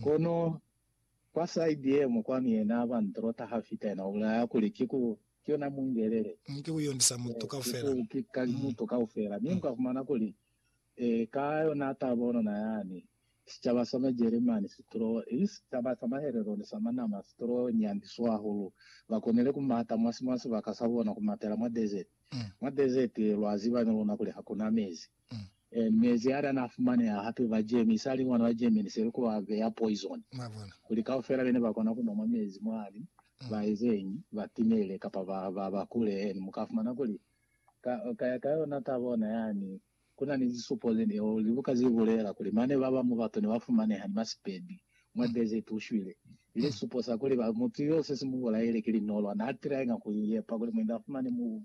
Kono kwa side yengwe kwanu yena aba ntrota hafita yena ubulaya kuli ki ku ki yona mungelele. Mu ki kuyondisa mutu Yes ki kaufela. ku ki ka mutu kaufela. Mi muka fumana kuli eh ka yona taba onona yani sicaba sa ma Jeremani si trowe ili sicaba sa mahelelo ni sa manama si trowe nyandiso hahulu. Ba konile ku mata mwasi mwa sibaka sa bona ku matela mwa desert. Mwa desert lwa ziba ni luna kuli hakuna mezi. Mm. Eh, mezi a lana a fumaneha hape ba Germany, i sa li mwana wa Germany, se likuba ba beya poison. Mwa bona? Kuli kaufela bene ba kona ku nwa mwa mezi mwani, Mm. ba ezeñi? Ba timele kapa ba, ba, ba kule. And mu ka fumana kuli, ka, ka, ka yona taba ona yani, ku na ni zisupo ze ne, or libuka ze bulela kuli mane ba bañwi batu ne ba fumaneha ni masipedi mwa Mm. desert u shwile. Ili Mm. sisupo sa kuli ba, mutu yo se si mu bulaile ki linolwa, n'a tryinga ku i yepa kuli mwendi a fumane mubu.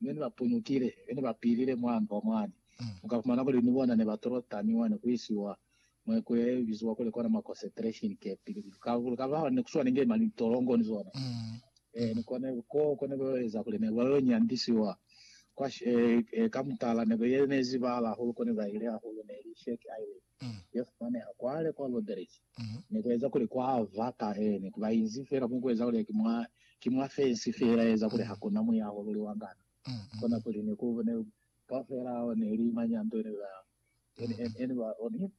Mi ni ba punukile, mi ni ba pilile mwa ndwa mwani, mu ka fumana kuli ni bona ne ba tolo tami mwani ku isiwa mwa ikulu ye biziwa kuli kona ma concentration camp, kuli ka ba ne ku swana inge mali tolongo ni zona. Ee, ni kone, ko, ko ne ba yo eza kuli ne ba yo nyandisiwa kwa, ee, ee, ka mutala ne ba ye, ne zibala hahulu ko ne ba ile hahulu ne li Shake Island. ya fumaneha kwale kwa Roderick ne ku eza kuli kwa ba ka ene ku ba inzi fela ku ku eza kuli ki mwa ki mwa fensi fela eza kuli ha ku na muyaho luli wa ngana. Kona kuli ne ku ne ka fela ne li manyanto ne ba ne ne ba on him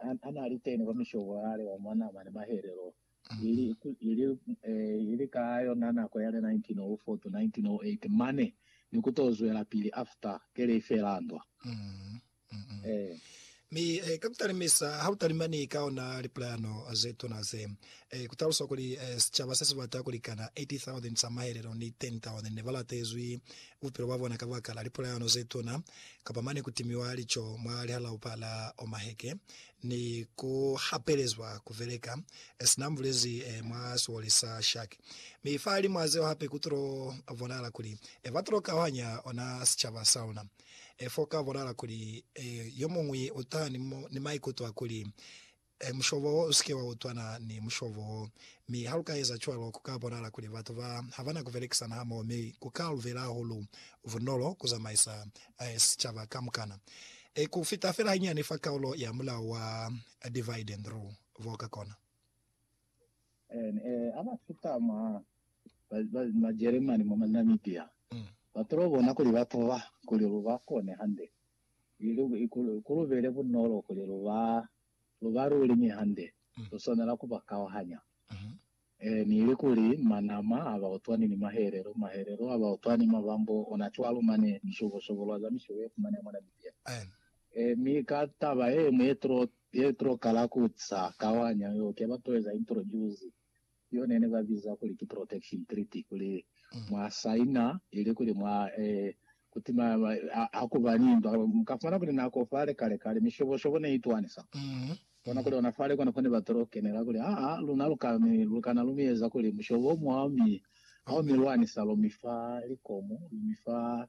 on a na li teni kwa mishobo yale wa mwa nama ni mahelelo ili ili ili ka yona nako yale 1904 to 1908 mane ni ku to zwelapili after ke lei fela ndwa. Mm-mm. Eh. Mi eh, ka kutalimisa ha utalimani ka ona lipulayano ze tuna ze eh, kutalusa kuli eh, sicaba se sibata kulikana 80,000 sa mahelelo ni 10,000 ne balatezwi bupilo bwa bona ka baka la lipulayano ze tuna kapa mane kutimiwa lico mwa lihalaupa la Omaheke ni ku hapelezwa kubeleka eh, sina mbulezi eh, mwa siwoli sa Shark. Mi fa limwa zeo hape kutulo bonala kuli eh, batulo kauhanya ona sicaba sa luna. E f'o ka bulala kuli, E, yo muñwi u ta ni, ni maikuto a kuli, E, mushobo wo, u si ke wa utwana ni mushobo wo. Mi ha lu ka eza cwalo, ku ka bonala kuli batu ba ha ba na ku belekisana hamoho, mi ku ka lu bela hahulu bunolo ku zamaisa eh, sicaba kamukana. Eh, ku fita fela hanyani fa kaulo ya mulao wa divide and rule, bo ka kona. Ha ba fita mwa Majeremani, mwa Namibia, ba tolo bona kuli ba tuba, kuli lu ba kone hande, ili ku lu bele bunolo kuli lu ba, lu ba luli mi hande lu swanela ku ba kauhanya, ili kuli manama ha ba utwani ni mahelelo, mahelelo ha ba utwani mabambo ona cwalo mane, mishobo-shobo lwa za mishobo ye fumaneha mwa Namibia. Mi ka taba ye ñwi ye tulo Pietro kala kuca kawanya yo ke batoeza introduce yo nene ba biza kuli ki protection treaty kuli mwa saina ili kuli mwa e kuti ma, ma, ha, hakuba ni ntwa muka fumana kuli nako fale kale kale mishobo shobo ne itwani sa bona kuli ona fale kona fone ba tolo kenela kuli a a luna luka mi lukana lumieza kuli mushobo mwa mi ha mi lwani sa lo mifa likomu mi fa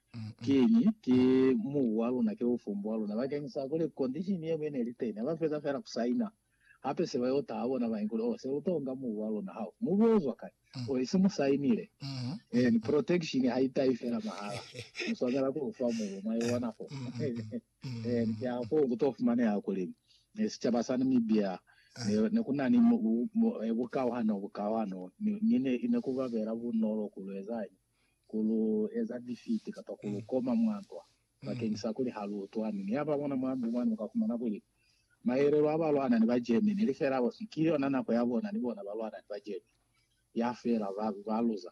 Kiñi? Ki mubu wa luna, ki bufumbu wa luna bakeng sa kuli condition ye mwi ne li teni. Ha ba feza fela ku saina, hape se ba yo taha bona bañi kuli, Oh, se lu to nga mubu wa luna. Hao! Mubu wo zwa kai? Oh, isi mu sainile. Eeni, protection ha i tahi fela mahala. Mu swanela ku lu fa mubu. Mwa ibona fo? Eeni, ki ha foo ku to fumaneha kuli sicaba sa Namibia ne, ne ku na ni bukauhano, bukauhano, mi ne, ne ku ba bela bunolo ku lu ezañi? ku lu eza bifiti kapa ku lu koma mwa ntwa bakeñisa kuli ha lu utwani ni ya ba bona mwa ndu mwani, u ka fumana kuli mahelelo a balwana ni ba Germany ili fela hosi ki yona nako ya bona ni bona ba lwana ni ba Germany ya fela ba, ba luza.